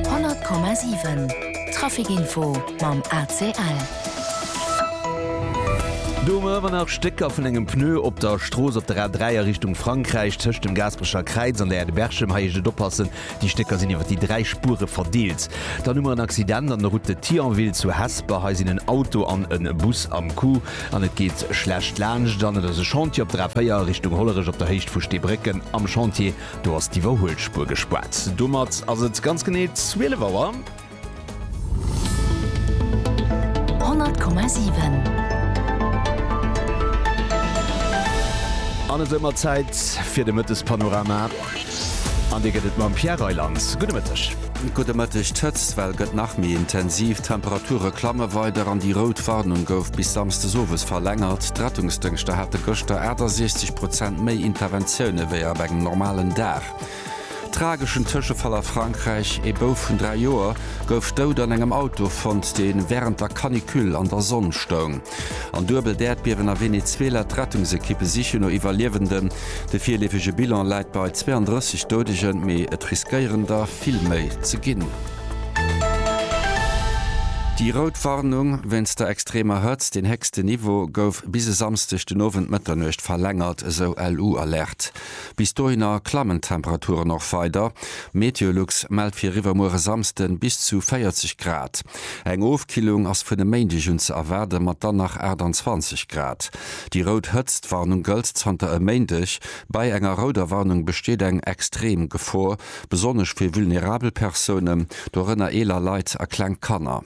100,7 Trafic info mam ACL. Do hu mer ëmmer nach Stécker vun engem Pneu op der Strooss op der A3 a Richtung Frankräich, tëscht dem Gaasperecher Kräiz an der Aire de Berchem. Hei heescht et oppassen, déi Stécker sinn iwwer déi dräi Spure verdeelt. Dann hu mer en Accident an der Route de Thionville zu Hesper. Hei sinn en Auto an e Bus am Coup an et geet schlecht laanscht. Dann et ass e Chantier op der A4 a Richtung Hollerech op der Héicht vu Steebrécken. Am Chantier Do ass d'Iwwerhuelspuer gespaart. Domat ass et ganz genee 12 Auer. 100,7. An et ëmmer Zäit fir de Mëttespanorama. An dee gëtt et mam Pierre Reyland. Gudde Mëtteg. Gudde Mëtteg, D'Hëtztwell gëtt nach méi intensiv, d'Temperature klamme weider an déi rout Warnung gouf bis Samsdes owes verlängert. D'Rettungsdëngschter hate gëschter 68 Prozent méi Interventioune wéi op engem normalen Dag. Trageschen Tëschefall a Frankräich, Ee Bouf vun 3 Joer gouf dout an engem Auto fonnt, dee wärend der Canicule an der Sonn stoung. An duebelt Äerdbiewen a Venezuela, d'Rettungsekippe sichen no Iwwerliewenden. De virleefege Bilan läit bei 32 Doudegen, mee et riskéieren der vill méi ze ginn. Déi rout Warnung wéinst der extremer Hëtzt, deen héchsten Niveau, gouf bis e Samsdeg den Owend Mëtternuecht verlängert, esou LU-Alerte. Bis dohinner klammen d'Temperaturen och weider. Meteolux mellt fir iwwermuer e Samsden bis zu 40 Grad. Eng Ofkillung ass vun e Méindeg un ze erwaarden, mat dann nach 28 Grad. Déi rout Hëtztwarnung gëllt zanter e Méindeg. Bei enger rouder Warnung besteet eng extrem Gefor, besonnesch fir vulnerabel Persounen, dorënner eeler Leit a kleng Kanner.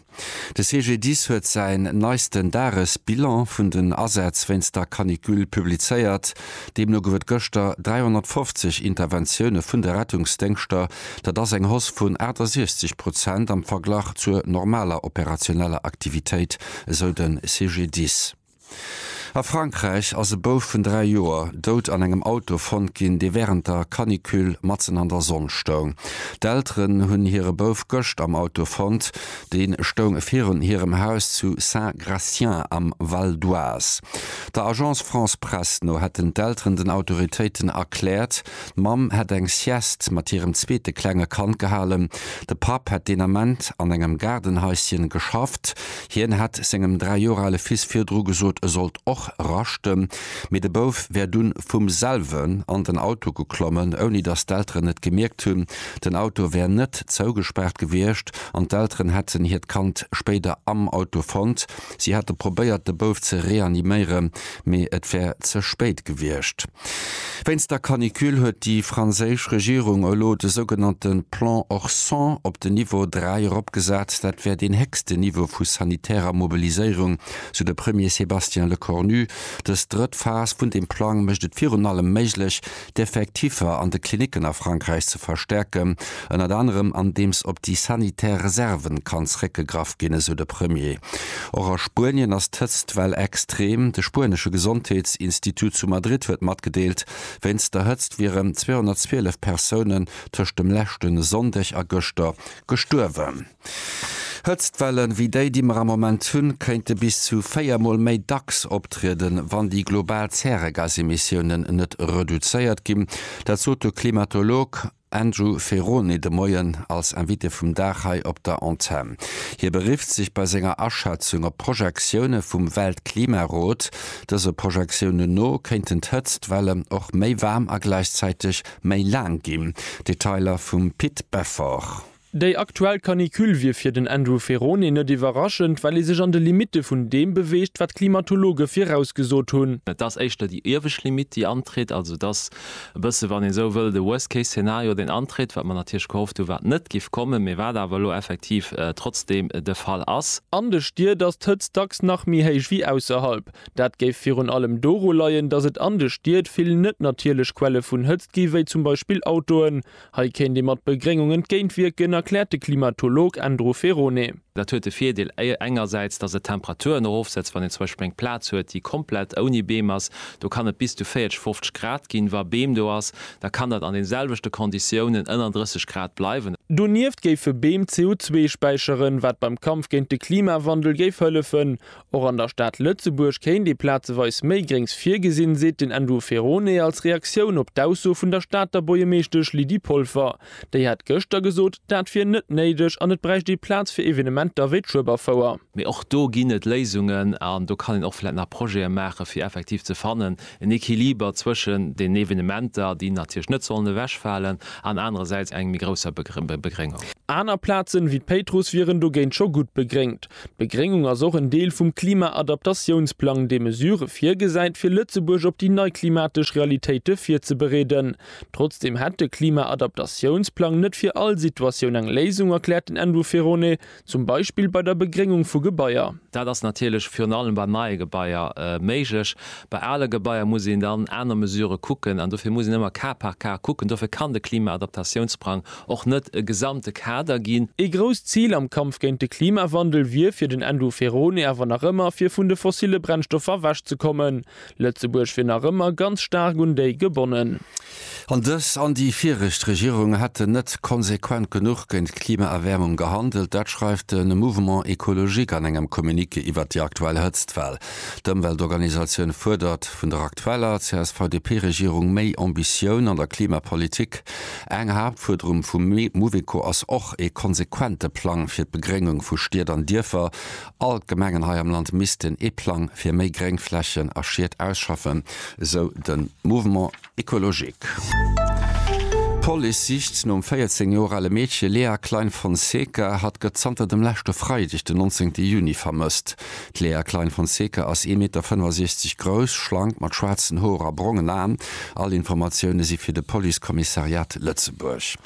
De CGDIS huet säin neisten Dagesbilan vun den Asätz wéinst der Canicule publizéiert. Deemno gouf et gëschter 350 Interventioune vun de Rettungsdéngschter. Dat ass eng Hausse vun 68 Prozent am Verglach zur normaler operationeller Aktivitéit, esou de CGDIS. A Frankräich ass e Bouf vun 3 Joer dout an engem Auto fonnt ginn, dee wärend der Canicule matzen an der Sonn stoung. D'Elteren hunn hire Bouf gëscht am Auto fonnt. Dee stoung virun hirem Haus zu Saint-Gratien am Val d'Oise. Der Agence France Presse no hätten d'Elteren den Autoritéiten erkläert, d'Mamm hätt eng Sieste mat hirem zweete klenge Kand gehalen. De Papp hätt deen Ament an engem Gaardenhaisschen geschafft. Hien hätt sengem dräi Joer ale Fils virdru gesot, e sollt och raschten. Mee de Bouf wär dunn vum selwen an den Auto geklommen, ouni datt d'Elteren et gemierkt hunn. Den Auto wär net zougespaart gewiescht an d'Elteren hätten hiert Kand spéider am Auto fonnt. Si hate probéiert, de Bouf ze reaniméieren, mee et wär ze spéit gewiescht. Wéinst der Canicule huet déi franséisch Regierung elo de sougenannte Plan Orson op den Niveau 3 eropgesat. Dat wär deen héchsten Niveau vu sanitärer Mobiliséierung, sou de Premier Sébastien Lecornu. Dës drëtt Phas vun deem Plang mécht et virun allem méiglech, d'Effektiffer an de Klinicken a Frankräich ze verstärken, ënnert anerem andeems op déi sanitär Reserven kann zréckgegraff ginn, esou de Premier. Och a Spuenien ass d'Hëtztwell extrem. De spuenesche Gesondheetsinstitut zu Madrid huet matgedeelt, wéinst der Hëtzt wieren 212 Persounen tëscht dem leschten Sonndeg a gëschter gestuerwen. Hëtztwellen, wéi déi, déi mer am Moment hunn, kéinte bis zu véier Mol méi dacks optrieden, wann déi global Zäregasemissiounen net reduzéiert ginn. Dat sot de Klimatolog Andrew Ferrone de Moien als Invité vum Dag hei op der Antenn. Hie berifft sech bei senger Aschätzung op Projektioune vum Weltklimarot. Dëse Projektiounen no kéinten d'Hëtztwellen och méi waarm a gläichzäiteg méi laang ginn. Detailer vum Pit Beffort. Déi aktuell Canicule wier fir den Andrew Ferrone net iwwerraschend, well ee sech an de Limitte vun deem beweegt, wat d'Klimatologe virausgesot hunn. Et ass éischter déi iewescht Limitt, déi antritt. Also et ass e bësse, wann ee esou wëll, de Worst Case Szenario, deen antritt, wat mer natierlech gehofft hunn, wat net géif kommen, mee wat awer elo effektiv trotzdeem de Fall ass. An de Stied ass d'Hëtzt dacks nach méi héich wéi ausserhalb. Dat géif virun allem doru leien, datt et an de Stied vill net natierlech Quelle vun Hëtzt gi wéi zum Beispill Autoen. Hei kéint ee mat Begréngung entgéintwierken, erkläert de Klimatolog Andrew Ferone. Dat huet de Virdeel engersäits, datt et d'Temperaturen erofsetzt, wann een zum Beispill eng Plaz huet, déi komplett ouni Beem ass, do kann et bis zu 40, 50 Grad ginn. Wa Beem do ass, da kann dat an de selwechte Konditiounen ënner 30 Grad bleiwen. Donieft géife Beem CO2 späicheren, wat beim Kampf géint de Klimawandel géif hëllefen. Och an der Stad Lëtzebuerg kéint ee plazeweis méi Gréngs virgesinn, seet den Andrew Ferone als Reaktioun op d'Ausso vun der Stater Buergermeeschtesch Lydie Polfer. Déi hat gëschter gesot, dat wier net néideg an et bräicht ee Plaz fir Evenementer wéi d'Schueberfouer. Mee och do ginn et Léisungen an do kann een och vläicht nach Projete maachen, fir effektiv ze fannen, en Equiliber zwëschen den Evenementer, déi natierlech net sollen ewechfalen, an anerersäits enger méi grousser Begréngung. Aner Plazen, wéi d'Péitruss, wieren dogéint scho gutt begréngt. D'Begréngung ass och en Deel vum Klima-Adaptatiounsplang, dee Mesurë virgesäit, fir Lëtzebuerg op déi nei klimatesch Realitéite virzebereeden. Trotzdeem hätt de Klima-Adaptatiounsplang net fir all Situatioun eng Léisung, erkläert den Andrew Ferone, zum Beispill bei der Begréngung vu Gebaier. Dat ass natierlech virun allem bei neie Gebaier méiglech. Bei ale Gebaier muss een dann aner Mesurë kucken an dofir muss een ëmmer Cas par Cas kucken. Dofir kann de Klima-Adaptatiounsplang och net e gesamte Kader ginn. Ee grousst Zil am Kampf géint de Klimawandel wier fir den Endo Ferone awer nach ëmmer, fir vun de fossille Brennstoffer ewech ze kommen. Lëtzebuerg wier nach ëmmer ganz staark un déi gebonnen. An dës an déi viregt Regierung hätten net konsequent genuch géint d'Klimaerwäermung gehandelt. Dat schreift de Mouvement Ecologique an engem Communiqué iwwert déi aktuell Hëtztwell. D'Ëmweltorganisatioun fuerdert vun der aktueller CSV-DP-Regierung méi Ambitioun an der Klimapolitik. Eng Haaptfuerderung vum Mouveco ass och ee konsequente Plang fir d'Begréngung vu Stied an Dierfer. All d'Gemengen hei am Land missten ee Plang fir méi Gréngflächen a Schied ausschaffen, esou de Mouvement écologique. D'Police sicht nom 14 Joer ale Meedche Lea Klein-Fonseca. Hatt gëtt zanter dem leschte Freideg, den 19 Juni, vermësst. D'Léa Klein-Fonseca ass ee Meter 65 grouss, schlank, mat schwaarzen Hoer a brongen Aen. All Informatioune si fir de Police-Kommissariat Lëtzebuerg.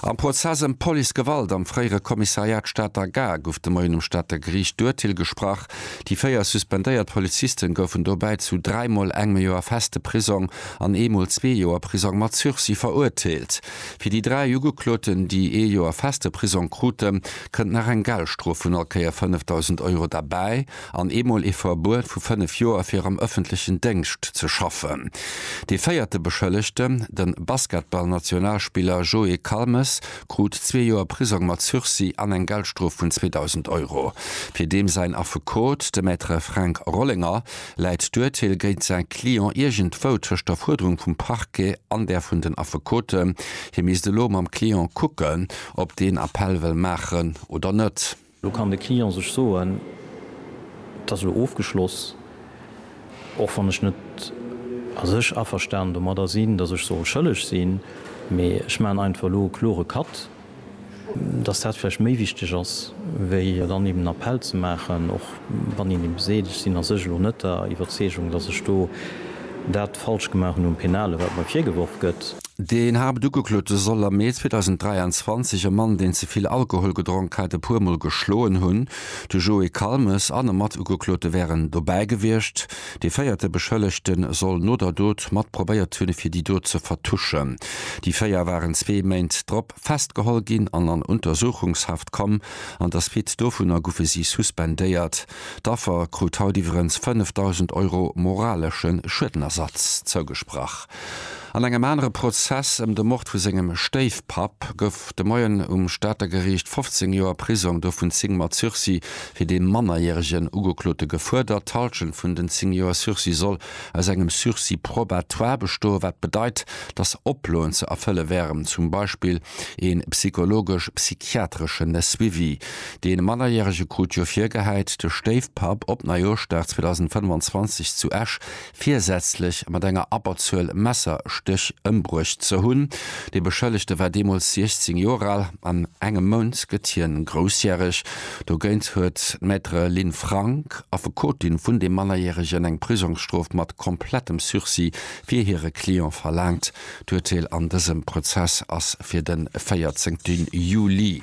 Am Prozess ëm d'Policegewalt am fréiere Kommissariat Stater Gare gouf de Moien um Stater Geriicht d'Urteel gesprach. Déi véier suspendéiert Polizisten goufen dobäi zu dräimol engem Joer feste Prisong an eemol zwee Joer Prisong mat Sursis verurteelt. Fir déi dräi Ugekloten, déi ee Joer feste Prisong kruten, kënnt nach eng Geldstrof vun all Kéier 5.000 Euro derbäi an eemol ee Verbuet vu fënnef Joer fir am ëffentlechen Déngscht ze schaffen. Dee véierte Beschëllegten, de Basketball-Nationalspiller Joé Calmes, krut zwee Joer Prisong mat Sursis an eng Geldstrof vun 2.000 Euro. Fir deem säin Affekot, de Maître Fränk Rollinger, Läit d'Urteel géint säi Client iergendwou tëscht der Fuerderung vum Parquet an där vun den Affekoten? Hie misst elo mam Client kucken, ob deen Appell wëll maachen oder net. Elo kann de Client sech soen, Et ass elo ofgeschloss, och wann ech net a sech averstanen domadder sinn, datt ech soll schëlleg sinn, mee ech maachen einfach elo e klore Cut. dass dat vläicht méi wichteg ass, wéi dann eben en Appell ze maachen, och wann een eben seet, ech sinn a sech elo net der Iwwerzeegung, dass ech do dat falsch gemaach hunn um Penale, wat mer virgeworf gëtt. Den Haaptugeklote soll am Mee 2023 e Mann, deen ze vill Alkohol gedronk hat, e puer Mol geschloen hunn. De Joé Calmes an e Matugeklote wären dobäi gewiescht. Dee véierte Beschëllegte soll no der Dot mat probéiert hunn, fir déi Dot ze vertuschen. Déi véier waren zwee Méint drop festgeholl ginn an an Untersuchungshaft komm. An der Suite dovunner goufe si suspendéiert. D'Affer krut haut iwwerens 5.000 Euro moralesche Schuedenersatz zougesprach. An engem anere Prozess ëm de Mord vu sengem Stéifpapp gouf de Moien um Stater Geriicht 15 Joer Prisong, dovun 10 mat Sursis, fir dee mannerjäregen Ugeklote gefuerdert. D'Hallschent vun den 10 Joer Sursis soll aus engem Sursis probatoire bestoen, wat bedeit, datt Oploen ze erfëlle wären, zum Beispill ee psychologesch-psychiatreschen Suivi. Dee Mannerjärege krut jo virgehäit, de Stéifpapp op Neijooschdag 2025 zu Esch virsätzlech mat enger Abberzuel Messerstéch ëmbruecht ze hunn. De Beschëllegte war deemools 16 Joer al. An engem Mount gëtt hien groussjäreg. Dogéint huet d'Maître Lynn Frank, Affekotin vun deem Mannerjäregen, eng Prisongsstrof mat komplettem Sursis fir hire Client verlaangt. D'Urteel an dësem Prozess ass fir de 14 Juli.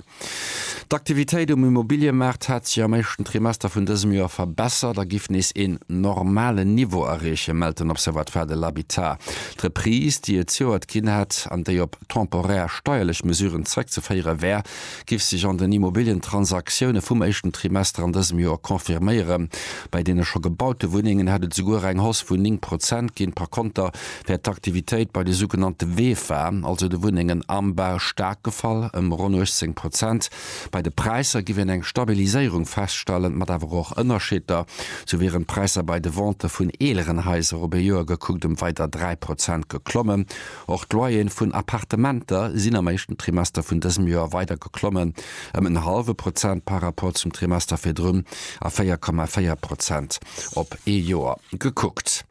D'Aktivitéit um Immobiliëmaart hat sech am éischten Trimester vun dësem Joer verbessert a giff nees een normalen Niveau erreechen, mellt den Observatoire de l'habitat. D'Reprise, déi et zejoert ginn hätt an déi op temporär steierlech Mesuren zeréckzeféiere wär, giff sech an den Immobilientransaktioune vum éischten Trimester an dësem Joer confirméieren. Bei deene scho gebaute Wunnengen hätt et souguer eng Hausse vun 9 Prozent ginn. Par Konter wär d'Aktivitéit bei de sougenannte WEFA, also de Wunnengen am Bau, staark gefall, ëm ronn 18 Prozent. Bei de Präisser géif een eng Stabiliséierung feststellen, mat awer och Ënnerscheeder. Sou wieren d'Präisser bei de Ventë vun eeleren Haiser op e Joer gekuckt ëm weider 3 Prozent geklommen. Och d'Loyeren vun Appartementer sinn am éischten Trimester vun dësem Joer weider geklommen, ëm en hallwe Prozent par Rapport zum Trimester virdrun a 4,4 Prozent op ee Joer gekuckt.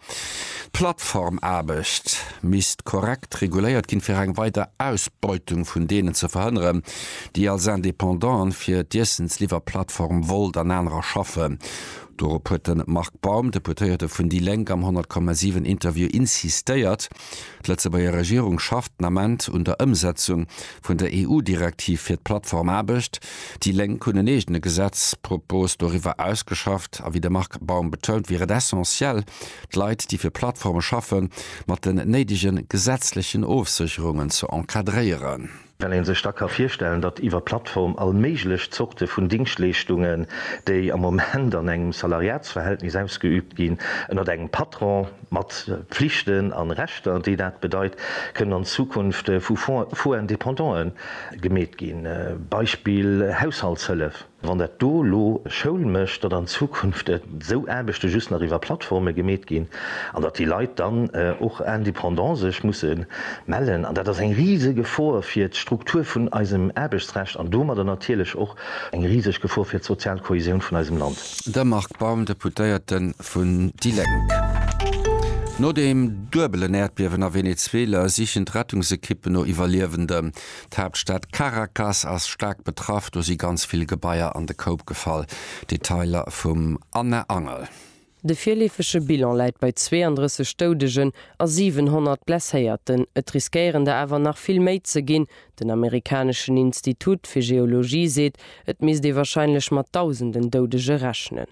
D'Plattformaarbecht misst korrekt reguléiert ginn, fir eng weider Ausbeutung vun deenen ze verhënneren, déi als Indépendant fir d'Iessensliwwerplattform Wolt an anerer schaffen. Dorop huet de Marc Baum, Deputéierte vun déi Lénk am 100,7 Interview insistéiert. D'Lëtzebuerger Regierung schafft den Ament un der Ëmsetzung vun der EU-Direktiv fir d'Plattformaarbecht. Déi Lénk hunn en eegene Gesetzpropos doriwwer ausgeschafft. A wéi de Marc Baum betount, wier et essentiell, d'Leit, déi fir Plattforme schaffen, mat den néidege gesetzlechen Ofsécherungen ze encadréieren. Well ee sech da ka virstellen, datt iwwer Plattform all méiglech Zorte vun Dingschtleeschtungen, déi am Moment an engem Salariatsverhältnis ausgeübt ginn, ënnert engem Patron, mat Pflichten a Rechter, déi dat bedeit, kënnen an Zukunft vu Faux indépendante gemeet ginn, Beispill Haushaltshëllef. Wann dat do elo e Schoul mécht, datt an Zukunft esou Aarbechte just nach iwwer Plattforme gemeet ginn an datt déi Leit dann och indépendant sech musse mellen. An dat ass eng riseg Gefor fir d'Struktur vun eisem Aarbechtsrecht an domadder natierlech och eng riseg Gefor fir d'sozial Kohäsioun vun eisem Land. De Marc Baum, Deputéierte vun déi Lénk. No deem duebelen Äerdbiewen a Venezuela sichen d'Rettungsekippen no Iwwerliewenden. D'Haaptstad Caracas ass staark betraff, do si ganz vill Gebaier an de Koup gefall. Detailer vum Anne Angel. De virleefege Bilan läit bei 32 Doudegen a 700 Blesséierten, et riskéieren der awer nach vill méi ze ginn. Den amerikaneschen Institut fir Geologie seet, et misst ee warscheinlech mat Dausenden Doudege rechnen.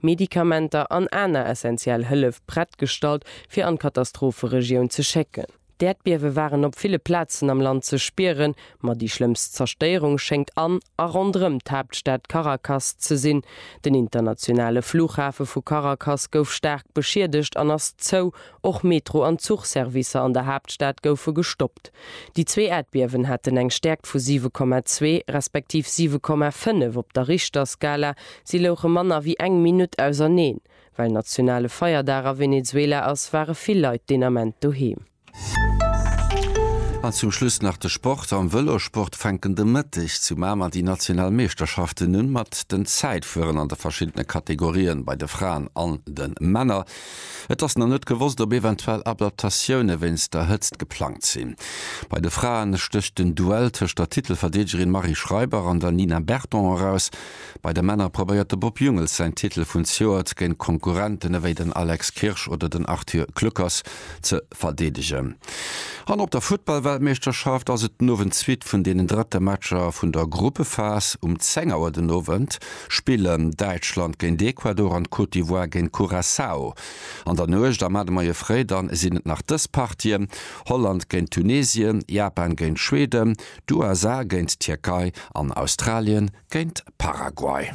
Medikamenter an aner essentiell Hëllef prett gestallt, fir an d'Katastropheregioun ze schécken. D'Äerdbiewe waren op ville Plazen am Land ze spieren, ma déi schlëmmst Zerstéierung schéngt an a ronderëm d'Haaptstad Caracas ze sinn. Den internationale Flughafe vu Caracas gouf staark beschiedegt an ass zou Och Metro an Zuchservicer an der Haaptstad goufe gestoppt. Déi zwee Äerdbiewen haten eng Stäerkt vu 7,2 respektiv 7,5 op der Richterskala. Si louche manner wéi eng Minutt auserneen. Well nationale Feierdag a Venezuela ass, ware vill Leit deen Ament doheem. An zum Schluss nach de Sport. Am Vëlossport fänken de Mëtteg zu Mamer déi national Meeschterschaften un, mat den Zäitfueren an de verschiddene Kategorien bei de Fraen an de Männer. Et ass nach net gewosst, ob eventuell Adaptatioune wéinst der Hëtzt geplangt sinn. Bei de Fraen stécht den Duell tëscht der Titelverdeedegerin Marie Schreiber an der Nina Berton eraus. Bei de Männer probéiert de Bob Jungels säin Titel vun Zjoert géint Konkurrenten ewéi den Alex Kirsch oder den Arthur Kluckers ze verdeedegen. An op der Futtballweltmeeschterschaft ass et den Owend d'Suite vun deenen drëtte Matcher vun der Gruppephas. Um 10 Auer den Owend spillen Däitschland géint Ecuador an d'Côte d'Ivoire géint Curaçao. An der Nuecht am Ade Moie Fréi dann sinn et nach dës Partien, Holland géint Tunesien, Japan géint Schweden, d'USA géint d'Tierkei an Australien géint Paraguay.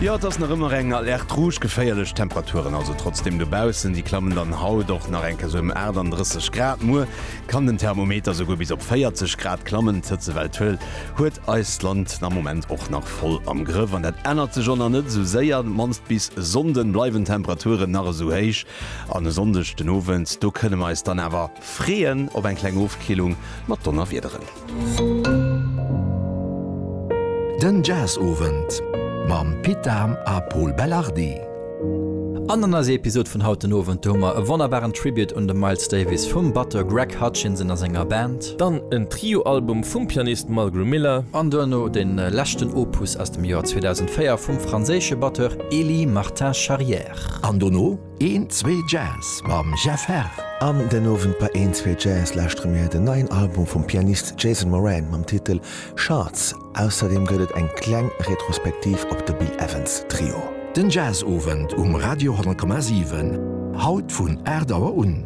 Jo et ass nach ëmmer eng Alerte rouge, geféierlech Temperaturen also trotzdem dobaussen. Déi klammen dann haut och nach eng Kéier esou ëm 38 Grad. Muer kann den Thermometer esouguer bis op 40 Grad klammen. D'Hëtzewell Tuel huet eist Land am Moment och nach voll am Grëff an dat ännert sech och nach net esou séier. Op d'mannst bis Sonnden bleiwen d'Temperaturen nach esou héich an e Sonndeg den Owend do kënne mer eis dann awer. Freeën op eng kleng Ofkillung mat Donnerwiederen. Den Jazzowend mam Pit Dahm a Pol Belardi. An an eiser Episod vun haut den Owend, do hu mer e wonnerbaren Tribute un de Miles Davis vum Batteur Greg Hutchinson a senger Band. Dann en Trio-Album vum Pianist Mulgrew Miller. An duerno den leschten Opus aus dem Joer 2004 vum franséische Batteur Elie Martin-Charrière. An dono Een Zwee Jazz mam Jeff Herr. An den Owend bei Een Zwee Jazz lauschtere mir den neien Album vum Pianist Jason Moran mam Titel Shards. Ausserdeem gëtt et eng kleng Retrospektiv op de Bill Evans Trio. Den Jazzowend um Radio 100,7, haut vun 8 Auer un.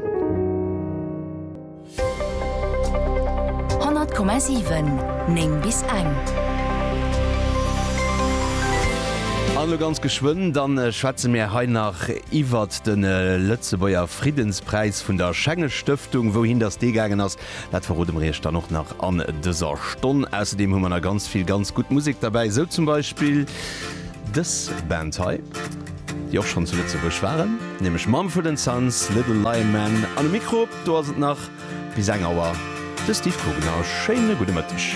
100,7 9 bis eng. An elo ganz geschwënn, da schwätze mär hei nach iwwert de Lëtzebuerger Friddenspräis vun der Schenges-Stëftung. Wouhin datt dee gaangen ass, dat verrode mer iech dann och nach an dëser Stonn. Ausserdeem hu mer nach ganz vill ganz gutt Musek derbäi, sou zum Beispill dës Band hei, déi och schonn zu Lëtzebuerg waren, nämlech Mumford and Sons, Little Lionman. An um Mikro. Do ass et nach bis eng Auer. De Steve Guggenau, schéine gudde Mëtteg.